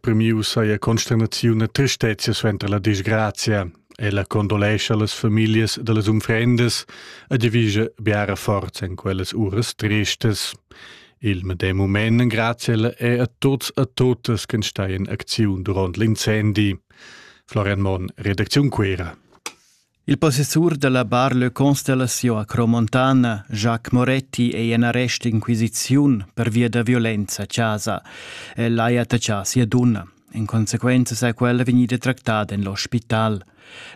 Premiu saja consternaziun e tristezia suenter la disgrazia. Ella condolescha las familias da las unfrendas e divisa biara forza en quellas uras tristas. Il medem moment grazie è a tuts e totes che stai in acziun durant l'incendi. Florian Monn, Redaktion Quera. Il possessur dalla Bar Le Constellation a Cromontana, Jacques Moretti, ei en arrest d'inquisiziun pervia da violenza a casa. El ha attachà sia dunna. In consequenza sei quella vegnida tractada en l'ospital.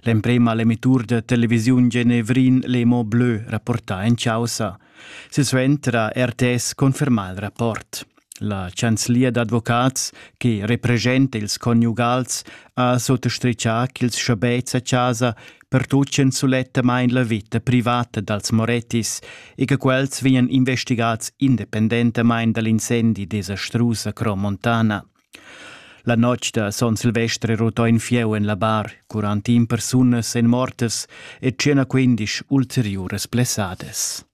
L'emprema l'emitur da televisiun Genevrin Le Mot Bleu rapportà en causa. Silsuenter ha RTS confermà il rapport. La chanzlia d'advocats che representa ils conjugals ha sottastritgà ch'ils schabets a chasa pertutgien sulettamain la vita privata dals Morettis e che quels vegnan investigads independentamain da l'incendi desastrus a Cro Montana. La notg da son Silvestre rotò in fieu en la bar, quarantin persunas èn mortas e 115 ulteriuras blessadas.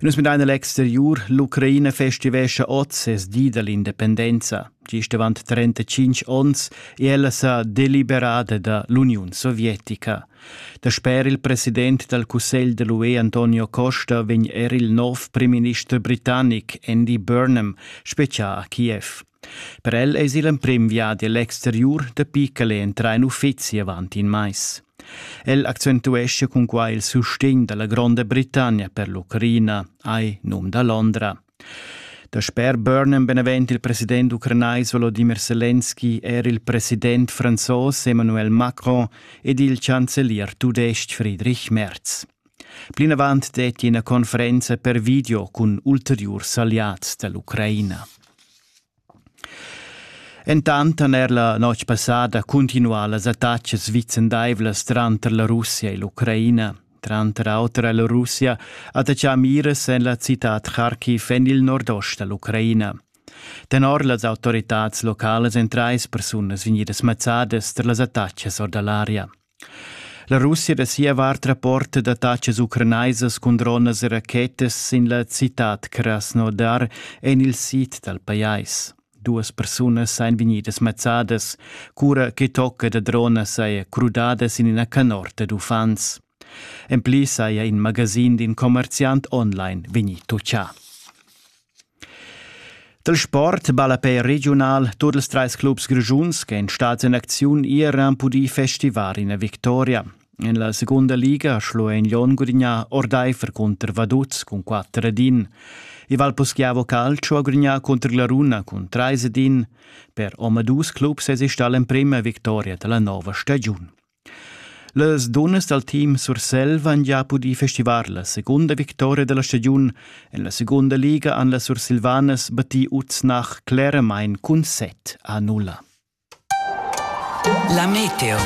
Nus midain a l'exteriur, l'Ucraina festivescha oz ses di da l'independenza. Gist avant 35 onns è ella sa deliberada da l'Uniun sovietica. Dasper il president dal cussegl de l'UE Antonio Costa vegn er il nov primminister britannic Andy Burnham spezià a Kiev. Per el eis igl emprim viadi egl exteriur dapi ch'el ei entrà in uffizi avant in mais. El accentuescha cun quai il sustegn dalla Gronda Britannia per l'Ucraina, ai num da Londra. Da sper Burnham benavent il president ucranais Volodymyr Zelensky er il president franzos Emmanuel Macron ed il chancelier tudestg Friedrich Merz. Plinavant detti ina conferenza per video cun ulteriurs alliads da l'Ucraina. Entant han er la notg passada cuntinuà las attacas vicendaivlas tranter la Russia e l'Ucraina. Tranter auter è la Russia attaccà miras en la citad Kharkiv en il nordost da l'Ucraina. Tenor las autoritads localas èn trais persunas vegnidas mazzadas tar las attacas or da l'aria. La Russia da sia vart rapporta d'attatgas ucranaisas cun dronas e rachetas sin la citad Krasnodar en il sid dal pajais. Duas persunas èn vegnidas mazzadas, cura che tocca da dronas saja crudada sin ina canorta d'uffants. En pli saja in magasin d'in commerziant online vegnì toccià. Dal sport ballapè regiunal tut ils trais clubs grischuns ch'èn stads en acziun iran pudì festivar ina victoria. En la segunda liga Schluein Lyon gudignà ordaifer cunter Vaduz cun 4 ed 1. Il Valposchiavo Calcio ha gudignà cunter la Runa cun 3 ed 1. Per omadus clubs èsi stà l'emprima victoria da la nova stagiun. Las dunnas dal team Surselva han gia pudì festivar la segunda victoria da la stagiun. En la segunda liga han las Sursilvanas battì Uznach cleramain cun set a nulla. La Meteo.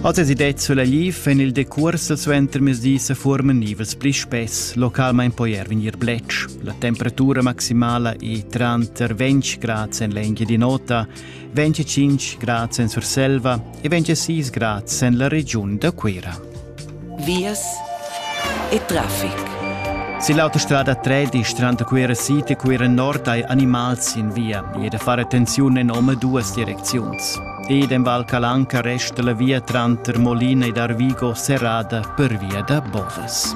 Oz es det sulla Liv en il decurs suenter mesdi se formen nivels pli spess, localmain poi er vegnir bletsch. La temperatura maximala è tranter 20 grad en l'engia di nota 25 grads en Surselva e 26 grads en la regiun da Cuira. Vias e traffic. Se l'autostrada 3 di strada Cuira City Cuira Nord hai animals in via e da fare attenzione in om duas direcziuns. Ed in Val Calanca resta la via tranter Molina ed Arvigo serrada per via da Bovas.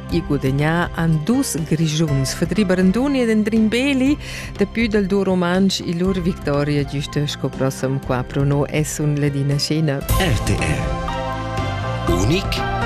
e gudagnà han dus Grischuns, Fedri Baranduni ed Andrin Beli, daplü dal duo rumantsch e lur victoria giusta sco prossem qua pro no es un Ladina Scena. RTR Unik